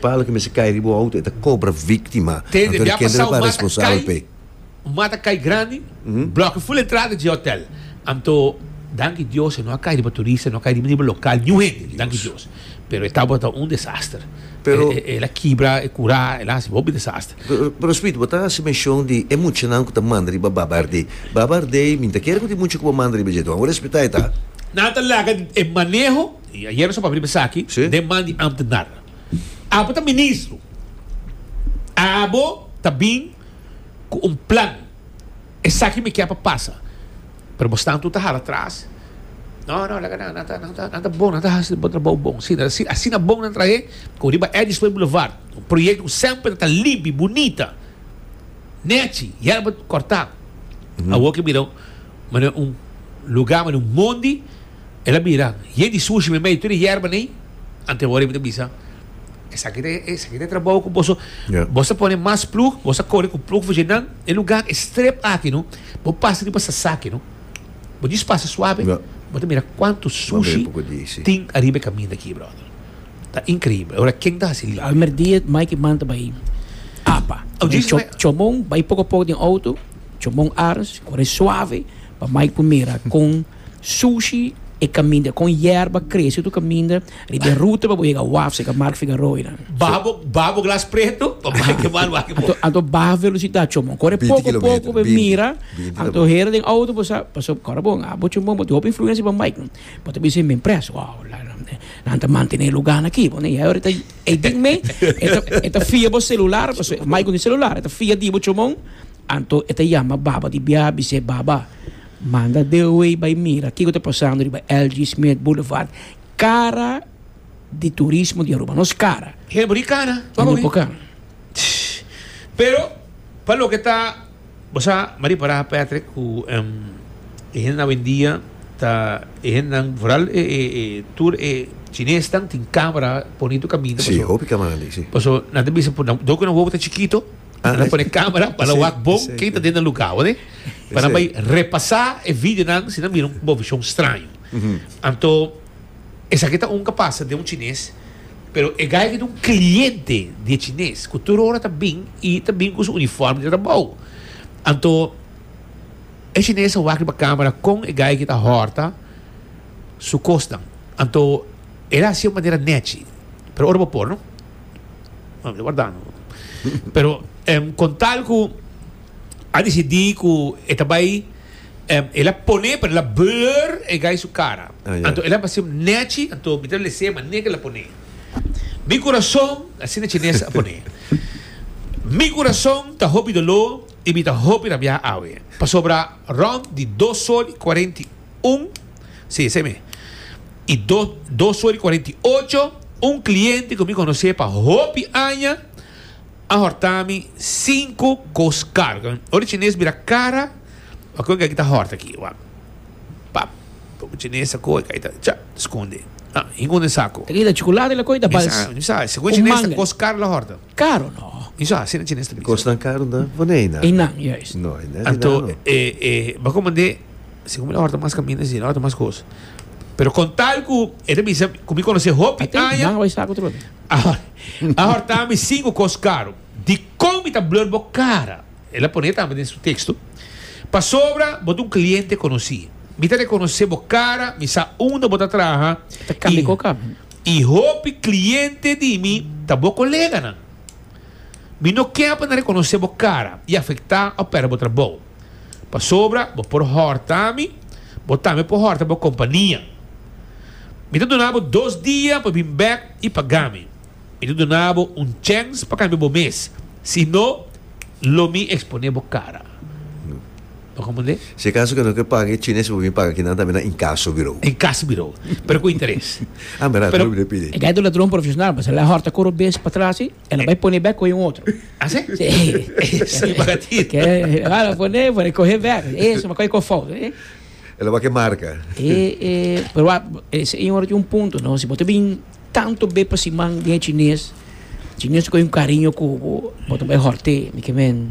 Palo ke mester kai riba bo auto e ta kobra víktima anto di kende lo ta responsabel p'e. Un mata kai grandi blòk'e ful entrada dje hotèl anto danki Dios e no a kai riba turista e no a kai riba ni riba lokal niun hende danki Dios pero e tabata un desaster el a kibra e kurá el a hasi hopi desaster. Pero Smith bo ta hasi menshon di e muchanan ku ta manda riba Baba Ardei Baba Ardei mi no ta kere ku tin mucha ku bo manda riba dje bo respetá e ta. Nan ta laga e maneho i ayer nos a papia riba esaki den man di ámtenár. Abo ta ministro. Abo ta bin cu un plan. Esaki mi kier pa pasa. Pero bo staan tur ta hala atras. No, no, laga nan. Nan ta bon. Nan ta hasi bo trabao bon. Si, nan ta si. Asina bon nan trahe cu riba Eddy Snoei Boulevard. Un proyecto cu semper ta limpi, bunita. Nechi, yerba corta. Awor ke mira mane un lugar, mane un mondi. El a bira, Ye di sushi mi mei tur e yerba nei? Ante hora mi ta bisa, Esaki ta esaki ta e trabou ku boso, boso ta pone mas plug, boso ta kore ku plug fuje nan e luga e strep aki no, bo pasa riba sasaki no, bo djis pasa suabe, bo ta mira kuantu sushi tin ariba e kaminda aki brother. Ta inkreible. Ora ken ta hasi limpia? Almer dia Mikey man ta bai apa, Chomon bai poko poko den outo, Chomon aris kore suabe pa Mikey por mira kon. Sushi e caminda con yerba crece tu caminda riba e ruta pa bo yega waf seca Marc Figaroy nan. Baha bo baha bo glas preto pa bay ke man wak bo. Anto baha velocidad chomon corre poco poco bo mira anto hera den auto bo sa pasobra ora bo a bo chomon bo tin hopi influencia riba Mike nan bo ta bisa men pres wow nan ta mantene lugar nan aki bo nan y ayo ta ey dik me e ta fia bo celular pasobra Mike no tin celular e ta fia di bo chomon anto e ta yama baba di bia bise baba. Manda de away bay mira kico ta pasando riba LG Smith Boulevard, cara di turismo di Aruba, nos cara. Hel boni cara, pa bo wi. Pero pa loke ta, bo sa mi a ripara Patrick cu e hende nan awendia ta e hende nan vooral e tur e chinesnan tin camera bonito caminda paso nan ta bisa por nan doki nan wowo ta chikito. Nan a pone camera pa nan wak bon ken ta den nan lugar hoor eh. Pa nan bay repasa e videonan si nan mira un bobichon straño. Anto esaki ta ungka pasa den un chines pero e guy aki ta un cliente di e chines cu tur ora ta bin y ta bin cu su uniforme di trabao. Anto e chines a wak riba camera con e guy aki ta horta su cosnan. Anto el a haci manera nechi pero ora bo por no. Mami ta warda no. Pero em, con tal cu a decidí cu e ta bai, em, el a pone, pero el a blur e guy su cara. Ah, ya. Anto el a haci nechi, anto mi ta lese manera que el a pone. Mi corazón, asina chines a pone, Mi corazón ta hopi doló y mi ta hopi rabiá awe, pasobra rond di dos sol y cuarenta y un, si, esei mi, i dos, dos suel i cuarenta i ocho, un cliente cu mi conoce pa hopi aña a horta mi cinco cos caro. Ora e chines bira cara, a cu e gaki ta horta aki? Wak, pap, pop e chines a cu e gaki ta, cha, scunde, ah, hingun den saco. Trida chocolate la cu e ta bals un manga. Segun e chines ta cos caro la horta. Caro no. Miso a asina chines ta bisa. Cosnan caro na bo na einan. Einan juist. No einan einan no. Anto e e bo como ande si cu mi la horta mas caminda si la horta mas cos. Pero con tal cu e ta bisa cu mi conoce hopi aña. A horta mi cinco cos caro. Dicon mi ta blur bo cara. El a pone tambe den su texto. Pasobra bo ta un cliente conoci. Mi ta reconoce bo cara. Mi sa unda bo ta traha. Ta cambia cu cambia. I hopi kliente di mi ta bo koleganan. Mi no ke pa nan rekonosé bo kara i afektá òf pèrdè bo trabou. Pasobra bo por hòrta mi, bo tambe por hòrta bo kompania. Mi ta duna bo dos dia pa bin bèk i pagá mi. Mi ta duna bo un chèns pa kambia bo mes, si no lo mi eksponé bo kara. Pa con pone. Si acaso que no quier paga e chines por bini paga aquí nan tambe na incaso bureau. Incaso bureau. Pero cu interes. Ah mira Pero Ruben a pidi. E gayta un ladron profesional pues el a horta coro un bes pa tras si el a bay pone bek coge un otro. Así? Sí. Esa y paga ti. Ke ala pone pone coge bek. E suma coge co fout. E El a bay que marca. e e pero wa e señor tin un punto no si bo ta bin tanto bes pa siman den e chines chines coge un cariño cubo bo ta bay horte mi ke men.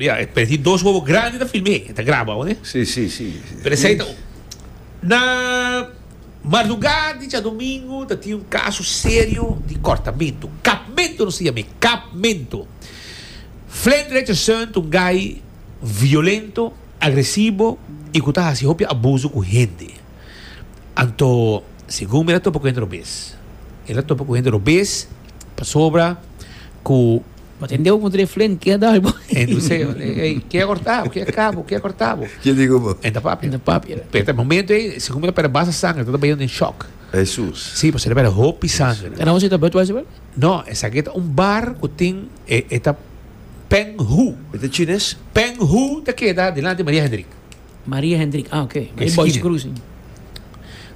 Ya, e perdí dos wowo grandi na film'é. E ta graba awa, ne? Sí, sí, sí. Pero esei ta. Na marlugá di djadumingu ta tin un kaso serio di kòrtamentu. Kapmentu nos ta yam'é. Kapmentu. Flint Richardson ta un gai violento, agresivo i ku ta hasi hopi abusu ku hende. Anto, segun mi el a topa ku hende robes. El a topa ku hende robes pasobra ku. Bo ta hende ku kontra e flen ke a dal bo. Entonse ey ke a kortá bo, ke a ka bo, ke a kortá bo. Ke di ku bo? E ta papia. E ta papia. Pero ta e momento ey, segun mi ta pera basta sangre, ta ta bayon den shòk. Hesus. Si, pasobra ta pera hopi sangre. E nòmber si ta Budweiser wel? No, esaki ta un bar ku tin e e ta Peng Hu. E ta chines? Peng Hu ta keda dilanti Maria Hendrik. Maria Hendrik, ah oke. Bai Boys Cruising.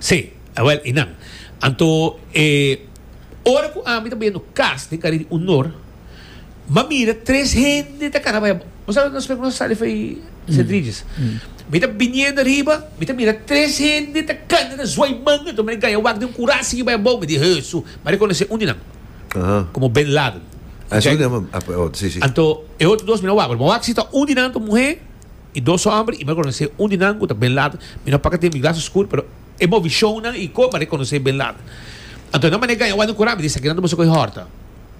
Si, awel i nan. Anto e. Ora ku ami ta bayendo kas den kare di unor, mi a mira tres hende ta kara bai. Bo sabe nos prekun sa di Fey Centrijes? Mi ta biniendo ariba, mi ta mira tres hende ta kanta, ta zwai manga anto mi na gaya wak den un kura a sigui bai abou. Mi di, Hesu! Mi a rekonosé un di nan komo Bin Laden. Anto e otro dos mi no a wak, pero mi a wak si ta un di nan ta muhé i dos ta òmber, i mi a rekonosé un di nan ku ta Bin Laden. Mi no a paka tin mi glas oskur, pero. E movi shownan i koma rekonosé Bin Laden. Anto nan manera gaña wak nan kurá, mi di, Esaki nan ta boso kohe hòrta.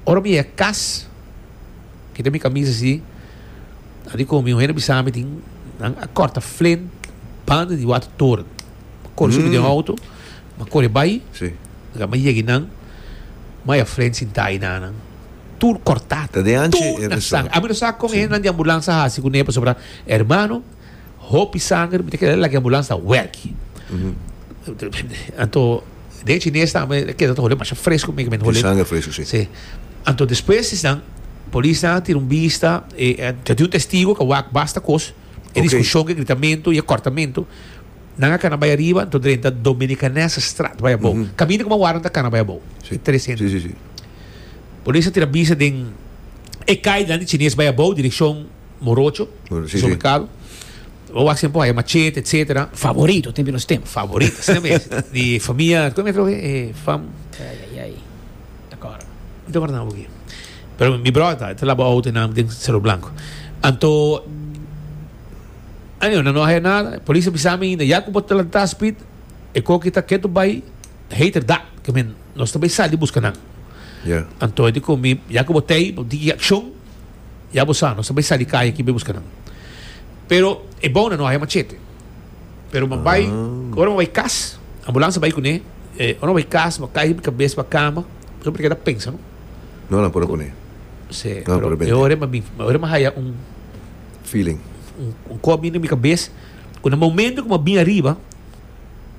Ora mi yega kas, kita mi kamis así, a di ku mi un hende a bisa mi tin, nan a kòrta flint banda di Water Toren. Mi kore sumi den outo, mi a kore bai, mi a yega einan, mi a haña flint sintá einan nan. Tur kòrtá, tur na sangri. Ami no sa kon e hendenan di ambulansa a hasi kuné, pasobra, hermano, Hopi sanger mi ta keda lag'e ambulans ta werki. Anto den chines ta me keda ta hole masha fresco mi men hole. Sanger fresco si. Si. Anto despues is nan polis nan tira un bista e ta di un testigo ka wak basta kos e diskushon e gritamento e kortamento nan a kana bai ariba anto drenta Dominicanese strat bai abou kaminda kuma wara nan ta kana bai abou e tres hende nan polis a tira bista den e kainan di chines bai abou direkshon morocho, supermercado, bo wak siempre hayo machete, etcetera. Favorito también nos tem. Favorito, así también. Di familia, ¿cómo es que fam? Ay, ay, ay. Te acuerdo. Te acuerdo nada porque. Pero mi brother ta, te labo auto en nam den Cerro Blanco. Anto Anyway, no hay nada. Polis bisa mi, ya como te la ta speed, e coque ta keto bay, hater da, que men, nos ta bay sali busca nan. Yeah. Anto dico mi, ya como te, di acción, Ya bo sa, nos ta bai sa di kaya aki bai buska nan. Pero e bouna no haya machete. Pero bo bai, ora bo bai kas, ambulansa bai kuné, ora bo bai kas, bo kai riba kabes, bo a kama, bo ta keda pensa, no? No nan por a kuné. Sí, pero e ora mi, e ora mi haya un, Feeling. un kop biba na mi kabes, ku na momento ku mi a bin ariba,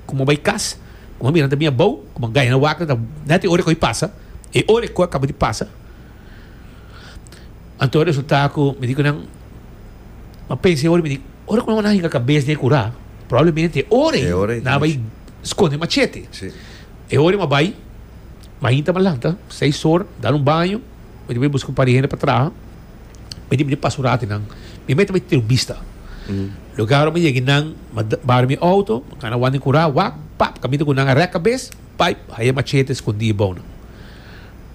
ku mi a bai kas, ku mi a mira nan ta bin abou, ku mi a gaya na wak, nan ta, nèt e ora ku a bin pasa, e ora ku a kaba di pasa, Anto resultá ku mi di ku nan a pensa oor mi di ora ku nan wak hinka kabes den e kurá probablemente e ora ei nan a bai skonde machete e ora ei mi a bai mainta mi a lanta seis oor dal un baño mi di bai buska un par di hende pa traha mi di mi di pasa un ratu nan mi mei ta bai tira un bista lugar ora mi yega nan mi a bar mi outo mi a kana wan den kurá wak pap kaminda ku nan a rek kabes bai haya machete skondi abou nan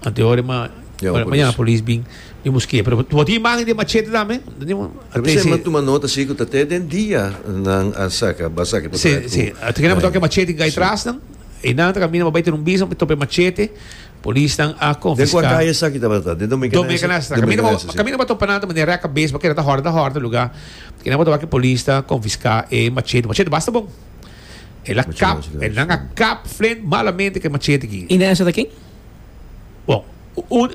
Ante ora ma mañana polis bin mi busk'e pero bo tin imagen di machete tambe? Lo mesey m'a tuma nota si ku ta te den dia nan a saka ba saki por traha ku. Ante kende bo toka e machete tin kai trasnan e nan ta kaminda bo bai ten un bisa bo topa e machete polisnan a konfiska. Den kua kaya esaki tabata? Den Dominga Nasa? Dominga Nasa si. Kaminda bo topa nan ta manera rek a bes bo keda ta hòrda ta hòrda luga kende bo toka ku e polis ta konfiska e machete machete basta bon. El a kap, e nan a kap Flynn malamente ku e machete aki. I nan esei ta ken? Bon, un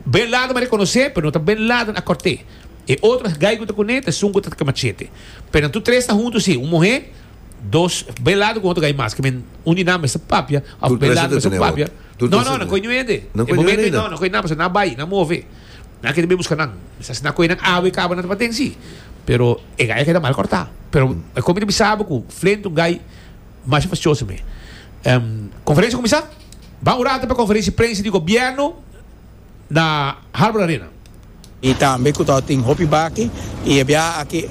Bin Laden a rekonosé, pero no ta Bin Laden a kòrt'é. E otro gai ku ta kuné ta esun ku ta ku e machete. Pero nan tur tres ta huntu sí, un muhé, dos Bin Laden ku otro gai mas, kimin un di nan mester papia of Bin Laden mester papia. No, no, nan koi niun hende. E momento ei no, nan koi nan, pasobra nan a bai, nan a move. Nan keda be buska nan. Mi sa siná ku enan awe i kaba nan tapa den si. Pero e gai a keda mal kòrtá. Pero e kon mi ta bisa abo ku flente un gai masha fastioso mi. Konferensia kuminsá. Ban un rato pa konferensia prensa di gobièrnu na Harbor Arena. I tambe ku ta tin hopi baki i e biaha aki.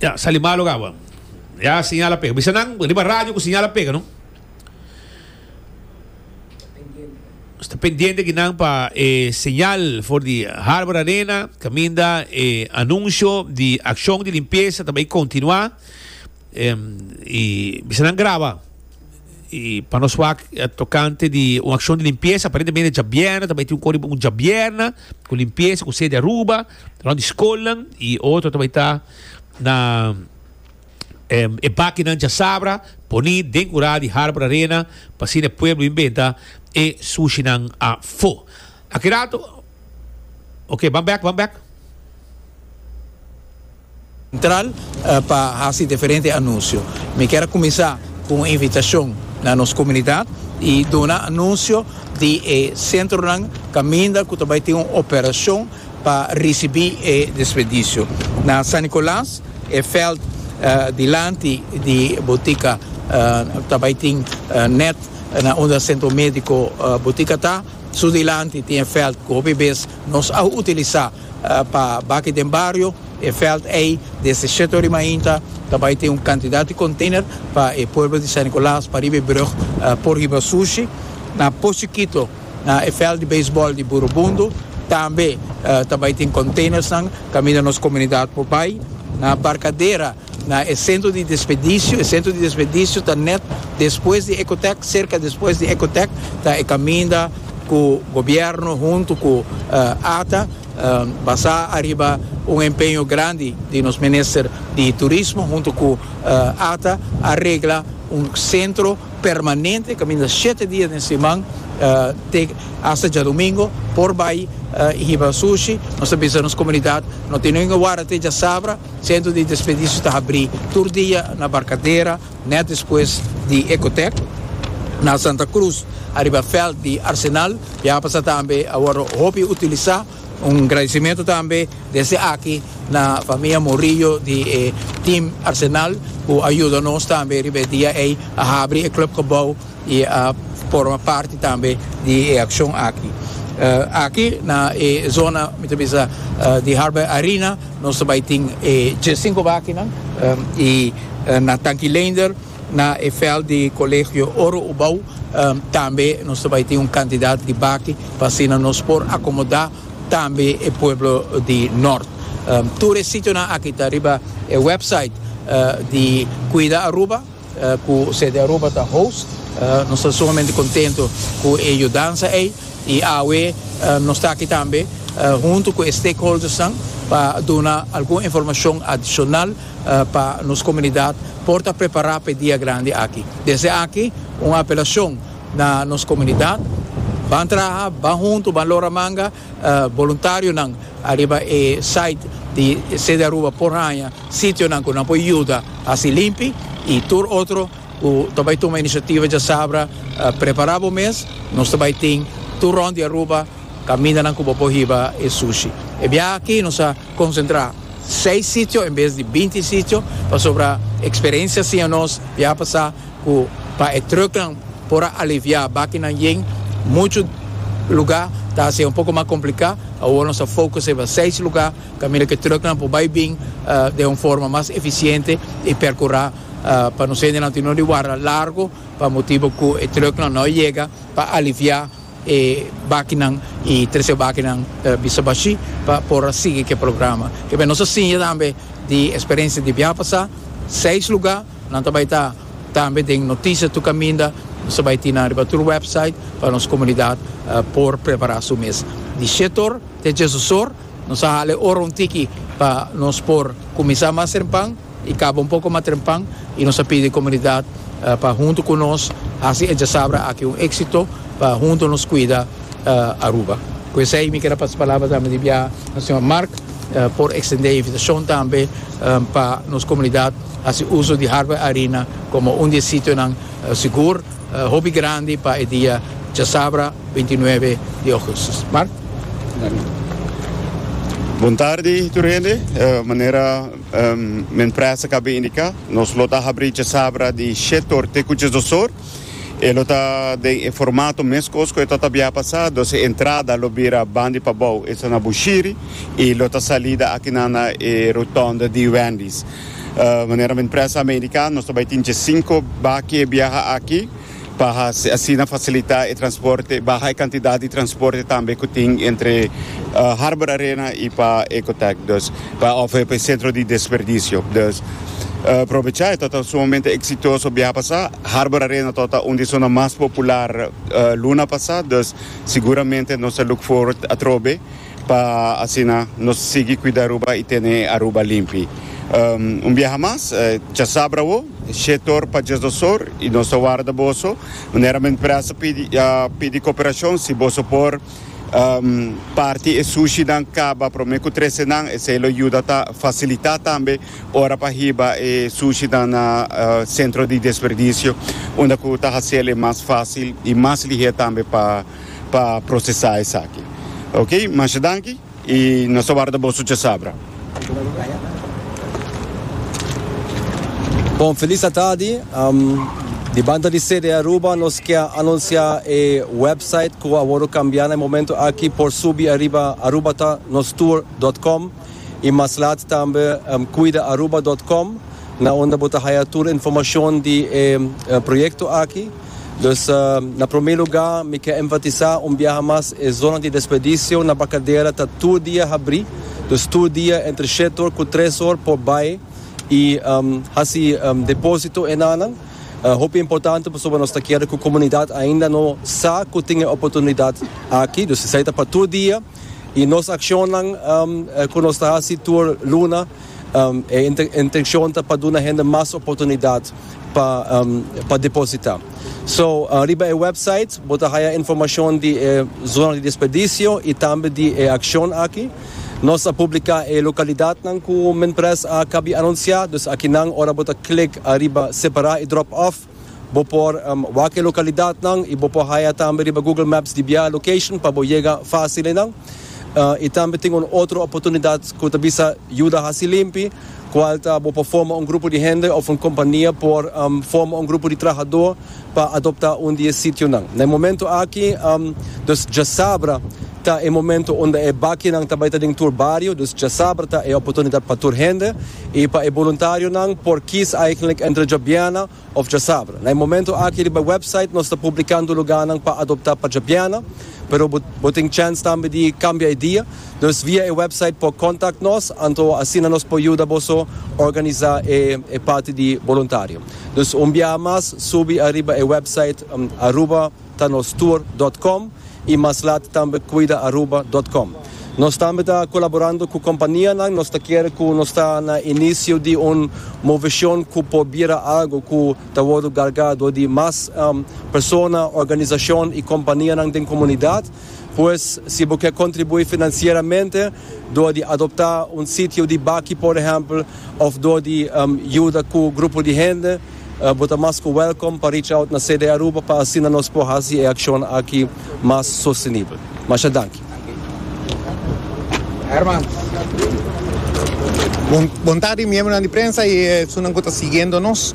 Ya, sali malo kawa. Ya señal a pega. Bisa nan riba radio ku señal a pega, no? Sta pendiente aki nan pa e señal for di Harbor Arena, kaminda e anunsio di akshon di limpiesa ta bai kontinuá. Em, i bisa nan graba. Y pa nos wak tocante di un accion di limpieza, aparentemente djabièrna ta bai tin un cor di un djabièrna cu limpieza cu sede Aruba rond di scolnan y otro ta bai ta na e bakinan djasabra poni den cura di Harbor Arena pa asina e pueblo inventa e sushinan afo. Aki rato. Ok, ban bek, ban bek. Sentral pa hasi diferente anuncio. Mi kier a cuminsa cu un invitacion na nos comunidad y duna anuncio di e centronan caminda cu ta bay tin un operacion pa ricibi e despedicio. Na San Nicolas, e veld dilanti di Botica ta bay tin net na unda Centro Medico Botica ta, su dilanti tin e veld cu hopi bes nos a utilisa. Pa baki den bario e veld ei desde shete ora di mainta ta bai tin un cantidad di container pa e pueblo di San Nicolas pa riba e brug por hiba sushi na Pochikito na e veld di baseball di Burubundo tambe ta bai tin containers nan caminda nos comunidad por bai na Barcadera. Na e sentro di desperdisio, e sentro di desperdisio ta net despues di Ecotec, serka despues di Ecotec, ta e kaminda ku gobièrnu huntu ku ata, basá ariba un empeño grandi di nos minister di turismo huntu ku ata, a regla un sentro permanente kaminda shete dia den siman te hasta djadumingu por bai hiba sushi. Nos ta bisa nos komunidat no tin ningun wara te djasabra. Sentro di desperdisio ta habri tur dia na Barcadera net despues di Ecotec, na Santa Cruz ariba veld di Arsenal y a pasa tambe awor hopi utilisa. Un agradecimento tambe desde aki na famia Morillo di e team Arsenal cu a yuda nos tambe riba e dia ey a habri e club gebouw. I a forma parti tambe di e akshon aki. Aki na e zona mi ta bisa di Harbour Arena nos ta bai tin e sinku bakinan i na Tanki Leender na e veld di Colegio Oro Ubao tambe nos ta bai tin un kantidat di baki pa asina nos por akomoda tambe e pueblo di Nort. Tur e sitionan aki ta riba e website di Cuida Aruba. Ku CD Aruba ta host, nos ta sumamente kontentu ku e yudansa ei i awe nos ta aki tambe huntu ku e stakeholdersnan pa duna algun informashon adishonal pa nos komunidat por ta prepará pa e dia grandi aki. Desde aki un apelashon na nos komunidat, Ban traha, ban huntu, ban lora manga. boluntarionan ariba e site di City Aruba por haña sitionan ku nan por yuda hasi limpi i tur otro ku ta bai tuma inisiativa djasabra prepará bo mes nos ta bai tin tur rònt di Aruba kamindanan ku bo por hiba e sushi. E biaha aki nos a konsentrá seis sitio en bes di binti sitio pasobra eksperensia siña nos biaha pasá. Cu pa e trucknan por a alivia bakinan yen mucho lugar ta hacié un poco mas complica. Awor nos a focus riba seis lugar caminda cu e trucknan por bay bin den un forma mas eficiente y percura pa nos hendenan tin no di warda largo pa motibo cu e trucknan no a yega pa alivia e bakinan y trece e bakinan bisa bashi pa por a sigui cu e programa. Kibe nos a siña tambe di experiencia di biaha pasá seis lugar. Nan ta bai ta tambe den Noticias tu Caminda, nos ta bai tina riba tur website pa nos comunidad por prepara su mes. Di shetor te djesosor nos a hala e ora un tiki pa nos por cuminsa mas trempan y caba un poco mas trempan y nos a pidi comunidad pa hunto cu nos haci e djasabra aki un exito pa hunto nos cuida Aruba. Cu esey mi keda pasa palabra tambe di bia na señor Mark por extende e invitacion tambe pa nos comunidad. Hasi uso di Harvey Arena komo un di e sitionan sigur hopi grandi pa e dia chasabra bintinuebe di ougustus. Mart. Bon tardi tur hende. Manera men prèsa kab'é indiká, nos lo ta habrí chasabra di shetor te ku chesdosor. E lo ta den e formato meskos ku e tabata bia pasá, dos e entrada lo bira bandi pa bou, esei na Bushiri, i lo ta salida akinan na e rotònda di Wendy's. Manera men prensa Amerika nos ta bai tin dje sinku baki e biaha aki pa asina fasilitá e transporte, baha e kantidat di transporte tambe ku tin entre Harbor Arena i pa Ecotech dus pa òf pa e sentro di desperdisio. Dus probechá e tabata sumamente eksitoso biaha pasá. Harbor Arena tabata un di e zona mas popular luna pasá, dus siguramente nos ta look forward atrobe. Pa asina nos sigui cuida Aruba y tene e Aruba limpi. Un biaha mas, chasabra awo, she tor pa Jesosor y nos ta warda boso. Manera men presta pidi pidi cooperacion si boso por parti e sushinan caba prome cu trece nan esey lo yuda ta facilita tambe ora pa hiba e sushinan na centro di desperdicio unda cu ta haciel e mas facil y mas lihe tambe pa pa procesa esaki ok masha danki y nos ta warda boso cha sabra. Bon feliz atardi um, di banda di CD Aruba nos kia anuncia e website ku a woro kambia na e momento aki por subi ariba arubatanostur.com i mas laat tambe um, cuidaAruba.com na unda bo ta haya tur informacion di e uh, proyecto aki. Dus na prome luga mi ke enfatisa un biaha mas e zona di desperdisio na Bacadera ta tur dia habri, dus tur dia entre shet or ku tres or por bai i hasi deposito e nanan. Hopi importante pasobra nos ta kere ku komunidat ainda no sa ku tin e oportunidat aki, dus esei ta pa tur dia i nos akshonnan ku nos ta hasi tur luna, E intencion ta pa duna hende mas oportunidad pa deposita. So, riba e website bo ta haya informacion di e zona di desperdicios y tambe di e accion aki. Nos a publica e localidadnan cu Minpres a cabia anuncia, dus akinan ora bo ta click ariba separa y drop off, Bo por wak e lokalidatnan i bo por haya tambe riba Google Maps di bia location pa bo yega fásil einan. I tambe tin un otro oportunidat ku ta bisa Yuda Hasi Limpi, kual ta bo por forma un grupo di hende òf un kompania por forma un grupo di trahadó pa adoptá un di e sitionan. Na e momentu aki, nos dja sabra. Ta e momento unda e bakinan ta bai ta den tur bario, dus djasabra ta e oportunidat pa tur hende i pa e boluntarionan por kies eigenlik entre djabiana of djasabra. Na e momento aki riba e website nos ta publikando luganan pa adopta pa djabiana, pero bo bo tin chance tambe di kambia e dia, dus via e website por kontak nos, anto asina nos por yuda boso organisa e e parti di boluntario. Dus un biaha mas subi ariba e website Aruba. ta nos tour dot com y mas lat tambe cuida Aruba dot com. Nos tambe ta colaborando cu companianan, nos ta kere cu nos ta na inicio di un movecion cu por bira algo cu ta wordo garga door di mas persona, organisacion y companianan den comunidad. Pues si bo ke contribui financieramente door di adopta un sitio di baki por ehempel of door di yuda cu grupo di hende, Bo ta mas ku wèlkom pa reach out na CD Aruba pa asina nos por hasi e akshon aki mas sostenibel. Masha danki. Bon tardi miembronan di prensa i esunnan ku ta siguiendo nos.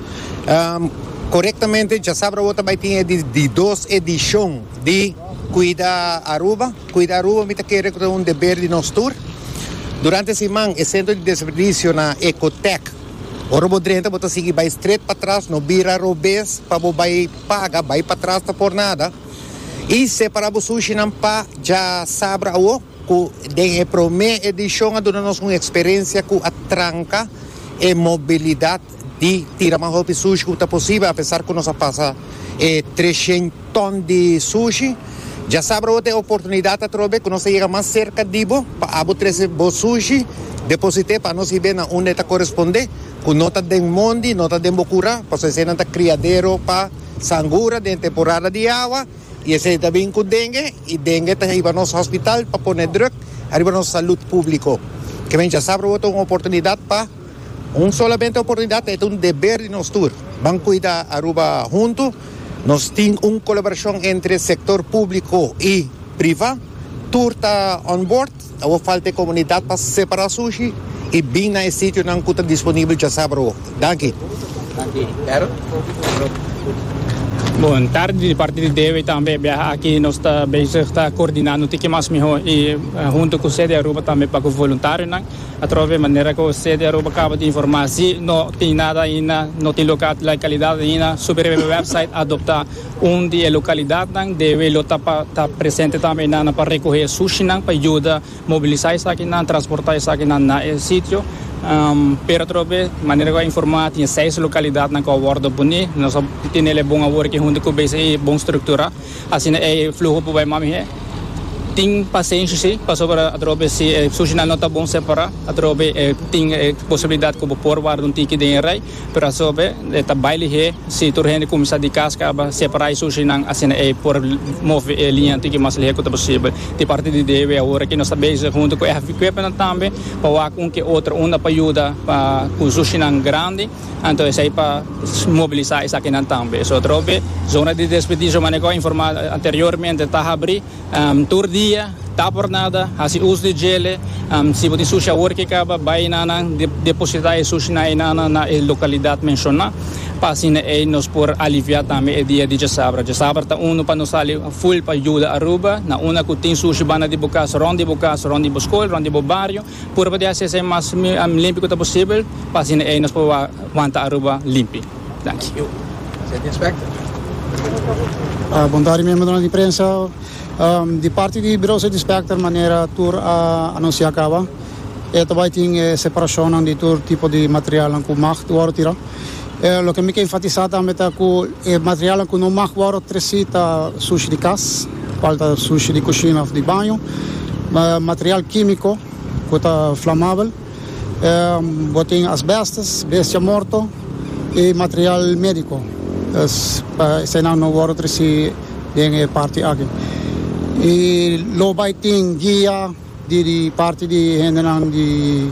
Korektamente djasabra bo ta bai tin e di dos edishon di Kuida Aruba. Kuida Aruba mi ta kere ku ta un deber di nos tur. Durante e siman e sentro di desperdisio na Ecotec Ora bo drenta bo ta sigui bai stret patras no bira robes pa bo bai paga bai patras ta por nada y separa bo sushi nan pa dja sabra awo cu den e prome edicion a duna nos un experencia cu a tranca e mobilidad di tira mas hopi sushi cu ta posibe apesar cu nos a pasa e treshen ton di sushi. Dja sabra awor ta e oportunidad atrobe cu nos ta yega mas cerca di bo pa abo trece bo sushi. Deposite pa nos hibe na unda e ta coresponde cu no ta den mondi, no ta den bo cura, pasobra eseynan ta criadero pa sangura den temporada di awa y esey ta bin cu dengue y dengue ta hiba nos hospital pa pone druk ariba nos salud publico. Kemen dja sabra awor ta un oportunidad pa un solamente oportunidad, ta e ta un deber di nos tur. Ban cuida Aruba hunto. Nos tin un colaboracion entre sector publico y priva. Tur ta on board. Awor falta e comunidad pa separa sushi y bin na e sitionan cu ta disponibel djasaba awor. Danki. Bon tardi di parti di Dewi tambe biaha aki nos ta bezig ta coordinando tin ki mas mihó y hunto cu CDAruba tambe pa cu voluntarionan. Atrobe manera cu Cde Aruba caba di informa si no tin nada ainda, no tin local di localidad ainda, Super Highway website a adopta un di e localidadnan. Debe lo ta pa ta presente tambe enana pa recoge sushinan pa yuda mobilisa esakinan, transporta esakinan na e sitio. Pero atrobe manera cu a informa tin seis localidadnan cu a wordo poni. Nos a tenel e bon awor aki hunto cu BCI bon structura. Asina e fluho por bai mamihe. Tin pasenshi si, pasobra atrobe si e sushinan no ta bon separá, atrobe tin e posibilidad ku bo por warda un tiki den e rei, pero asobe e ta bai lihé si tur hende kuminsá di kas kaba separá e sushinan, asina e por move e liña tiki mas lihé ku ta posibel. Di parti di Dewi awor aki nos ta bezig huntu ku e hafikwepenan tambe pa wak un ku e otro unda pa yuda pa ku sushinan grandi. Anto esei pa mobilisá esakinan tambe. So trobe zona di desperdisio manera ku a informá anteriormente ta habrí tur dia, ta por nada, hasi us di djele, si bo tin sushi awor ke kaba bai na nan depositá e sushi na einan nan na e lokalidat menshoná pa asina ei nos por aliviá tambe e dia di djasabra. Djasabra ta unu pa nos sali ful pa yuda Aruba, na una ku tin sushi banda di bo kas, rònt di bo kas, rònt di bo skol, rònt di bo bario. purba di hasi esei mas limpi ku ta posibel pa asina ei nos por wanta Aruba limpi. Danki. Bon tardi miembronan di prensa. Di parti di Birou City Inspector manera tur a anunsiá kaba e ta bai tin e separashonnan di tur tipo di materialnan ku mag wòrdu tirá. Eh, loke mi ke enfatisá tambe ta ku e materialnan ku no mag wòrdu tresí ta sushi di kas, kual ta sushi di kushina òf di baño, material kímiko ku ta flamabel, eh, bo tin asbèstes, bestia morto i material médiko. Es pa eseinan no wòrdu tresí den e parti aki. I lo bai tin guia. Di parti di hendenan di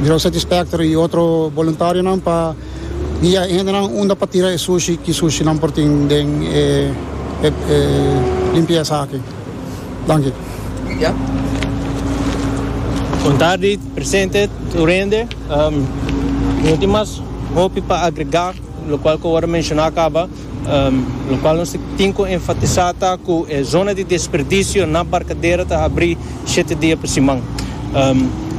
Grow Satisfactory y otro boluntarionan pa guia e hendenan unda pa tira e sushi ki sushinan por tin den e limpiesa aki. Danki. Bon tardi presente tur hende. Mi no tin mas hopi pa agrega lokual ku a wòrdu menshona kaba. Lokual nos tin ku enfatisá ta ku e zona di desperdisio na Barkadera ta abrí shete dia pa siman.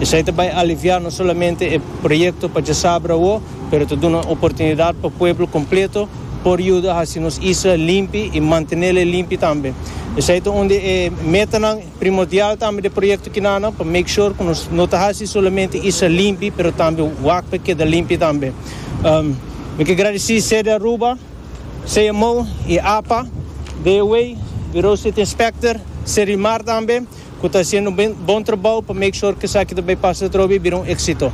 Esei ta bai aliviá no solamente e proyekto pa djasabra awo, pero ta duna oportunidat pa pueblo kompleto por yuda hasi nos isla limpi i mantenél e limpi tambe. Esei ta un di e metanan. Primordial ta ami den proyekto kinan pa make sure ku nos no ta hasi solamente isla limpi pero tambe wak pa e keda limpi tambe. Mi ke gradisí Sede Aruba, CMO i apa, DOA, Bureau State Inspector, Serimar tambe ku ta hasiendo un bon trabou pa make sure ku esaki ta bai pasa atrobe i bira un éksito.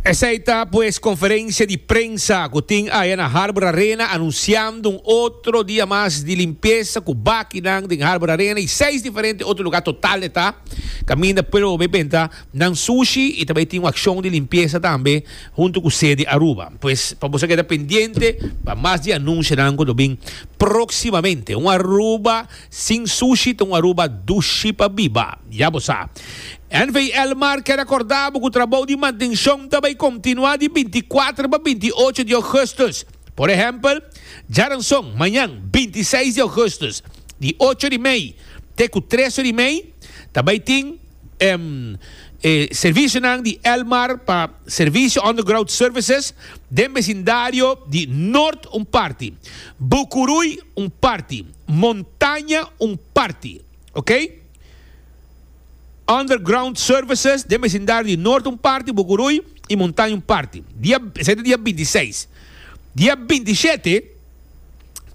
Esei ta pues conferencia di prensa cu tin aya na Harbor Arena anunciando un otro dia mas di limpieza cu bakinan den Harbor Arena y seis diferente otro lugar total e ta caminda pueblo bo bay benta nan sushi y ta bay tin un accion di limpieza tambe hunto cu sede Aruba. Pues pa boso a keda pendiente pa mas di anuncianan cu lo bin proximamente. Un Aruba sin sushi ta un Aruba dushi pa biba, ya bo sa. NVL Mar ke rekordá bo ku trabou di mantenshon ta bai kontinuá di binti kuater pa binti ocho di ougùstus. Por ehèmpel, djaranson, mañan, binti seis di ougùstus, di ocho di mei te ku tres or di mei, ta bai tin e servisionan di El Mar pa Servicio Underground Services den besindario di Nort un parti, Bucuruy un parti, Montaña un parti. Ok. Underground services den besindario di Noord un parti, Bucuruy y Montaña un parti. Dia, esey ta dia binti seis. Dia binti shete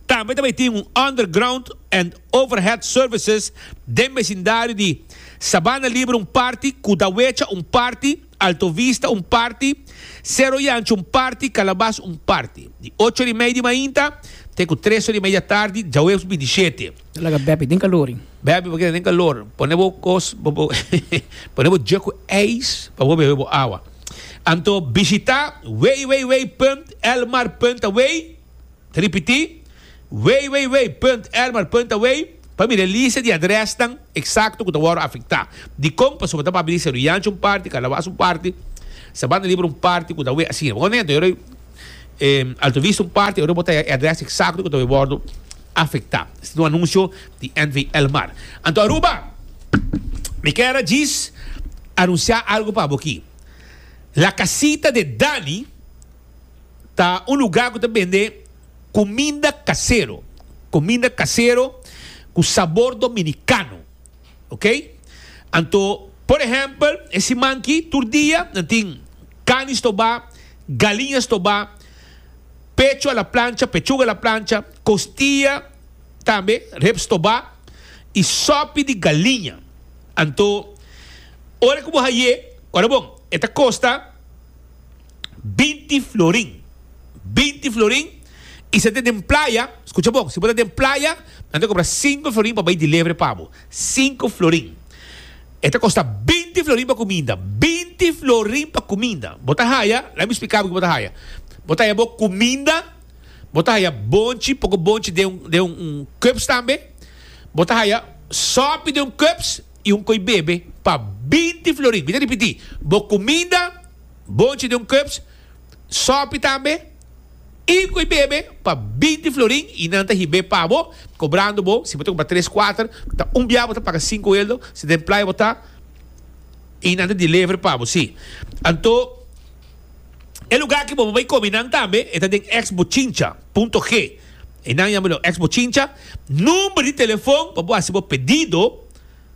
tambe ta bay tin un underground and overhead services den besindario di Sabana Libre un parti, Cudawecha un parti, Alto Vista un parti, Sero Yancho un parti, Kalabas un parti. Di ocho ora i mei di mainta te ku tres ora i mei di atardi djaweps bidishete. Ta laga bèbi den kalor i. Bèbi pa keda den kalor. Pone bo kos pa bo pone bo dje ku eis pa bo bebe bo awa. Anto bishita www.elmar.we. Ta ripití, www.ermer.away, pa mira e lista di adrèsnan eksakto ku ta wòrdu afektá. Dikon? Pasobra ta babilis Seru Yanchi un parti, Kalawas un parti, Sabana Liber un parti ku ta away asina. Bo konta? Yòrda e Alto Vista un parti, yòrda bo ta haña e adrès eksakto ku ta wòrdu afektá. Esei ta un anunsio di NV-Elmar. Anto Aruba, mi kèn a djis anunsiá algu pa bo akí. La Casita de Dani. ta un lugar cu ta bende cuminda casero, cuminda casero cu sabor dominicano, ok. Anto, por ehempel, e siman aki tur dia nan tin cani stoba, galiña stoba, pecho a la plancha, pechuga a la plancha, costia tambe, rib stoba y sopi di galiña. Anto, ora cu bo haye, ora bon, e ta costa. binti florin, binti florin, i si a ta den playa, skucha bon, si bo ta den playa, nan ta kompra sinku florin pa bai dilievri pa bo, sinku florin. E ta kosta binti florin pa kuminda, binti florin pa kuminda. Bo ta haya, la mi splika bo ke bo ta haya, bo ta haya bo kuminda, bo ta haya bonchi, poko bonchi den un, den un kups tambe, bo ta haya sòpi den un kups i un koi bebe pa binti florin. Mi ta ripiti, bo kuminda. Bochi di un cups sopi tambe y cu y bebe pa binti florin y nan ta hib'e pa bo cobrando bo si bo ta compra tres cuater ta un bia bo ta paga cinco eldo si den playa bo ta y nan ta deliver pa bo si anto e lugar ki bo bay comi nan tambe e ta den ex bochincha punto G y nan yama lo ex bochincha number di telefon pa bo haci bo pedido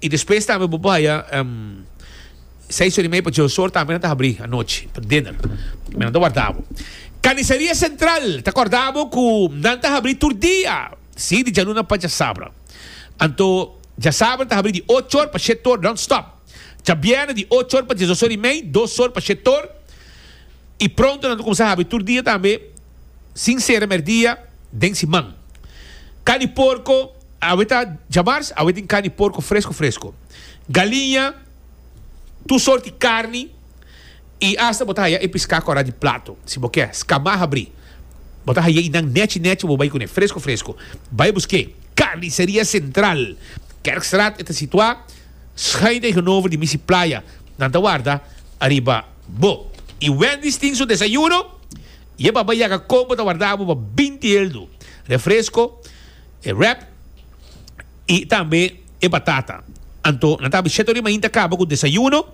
I despues tambe bo por haya seis ora y media pasobra Sor tambe no ta habri anochi pa dinner. Mi nan ta warda bo. Carniceria Central ta corda bo cu nan ta habri tur dia, si, di djaluna pa djasabra. Anto djasabra ta habri di ocho or pa shete or non stop. Djabierna di ocho or pa diesdos or y mei, dos or pa shete or. Y pronto nan ta cuminsa habri tur dia tambe, sin cera merdia, den siman. Carni porco. Awe ta djamars, awe tin carni porco fresco fresco, galiña, tur soort di carni y hasta bo ta haya e pisca cora di plato. Si bo kier scama habri, bo ta haya inan nechi nechi bo bay cune fresco fresco. Bay busque Carniceria Central, Kerkstraat e ta situa schuin tegenover di Misi Playa. Nan ta warda ariba bo. Y Wendy's tin su desayuno, ye baba yaga combo ta warda abo pa binti eldu, refresco, e wrap y tambe e batata. Anto nan ta habi siete ori mañana ta caba cu desayuno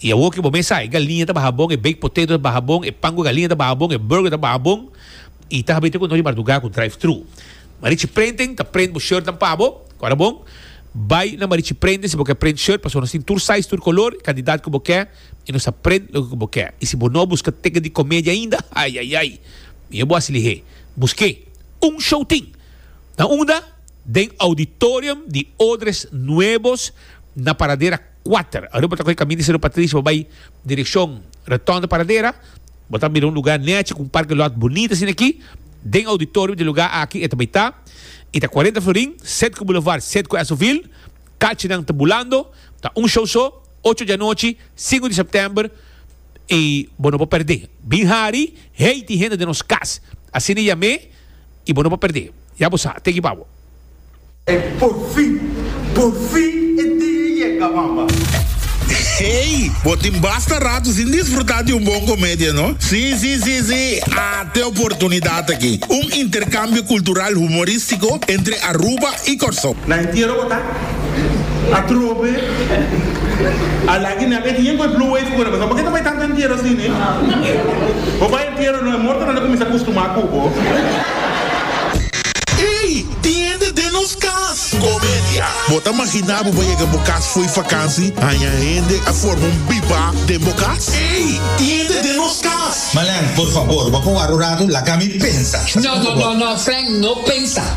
y awo ki bo mes sa e galiña ta baha bon, e baked potato ta baha bon, e pan cu galiña ta baha bon, e burger ta baha bon y ta habi te cu nos di marduga cu drive thru. Ma Richie Printing ta print bo shirt nan pa bo, cu ora bon bay na Richie Printing si bo ke print shirt pasobra nos tin tur size, tur color y cantidad cu bo ke y nos ta print loke cu bo ke. Y si bo no a busca ticket di comedia ainda, ayayay, mi yo bo haci lihe, busque. Un show tin na unda den auditorium di Odres Nuevos na Paradera kuater. Awe bo ta kohe kaminda di Sero Patricio pa bai direkshon Rotonda Paradera, bo ta mira un lugá nèchi ku un parke lòt bunita asin'akí. Den auditorium di lugá aki e ta bai ta i ta kuarenta florin, set ku bulevard, set ku Esovil. Kalchinan ta bulando. Ta un show so, ocho di anochi, sinku di sèptèmber. y bo no por perdé. Bin hari, hey tin hende den nos cas, asina yamé, y bo no por perdé. Ya bo sa, teki pa bo. Por fin, por fin e dia a yega, mama. Hey, bo tin basta rato sin disfruta di un bon comedia, no? Sí, sí, sí, sí, ate e oportunidad aki, un intercambio cultural humorístico entre Aruba y Corsou. Na entiero bo ta? Atrobe a lagi nan e dien ku e blue wave ku nan pensá por ke ta bai tantu entiero así ne? Bo bai entiero no e morto nan ta kuminsá kustumá ku bo. Ey! Tiende den nos kas! Comedia! Bo ta maginá bo bai yega bo kas fo'i fakansi, haña hende a forma un bibá den bo kas? Ey! Tiende den nos kas! Malan, por fabor, bo a koa rurado, laga mi pensa. No, no, no, no, Frank, no pensa.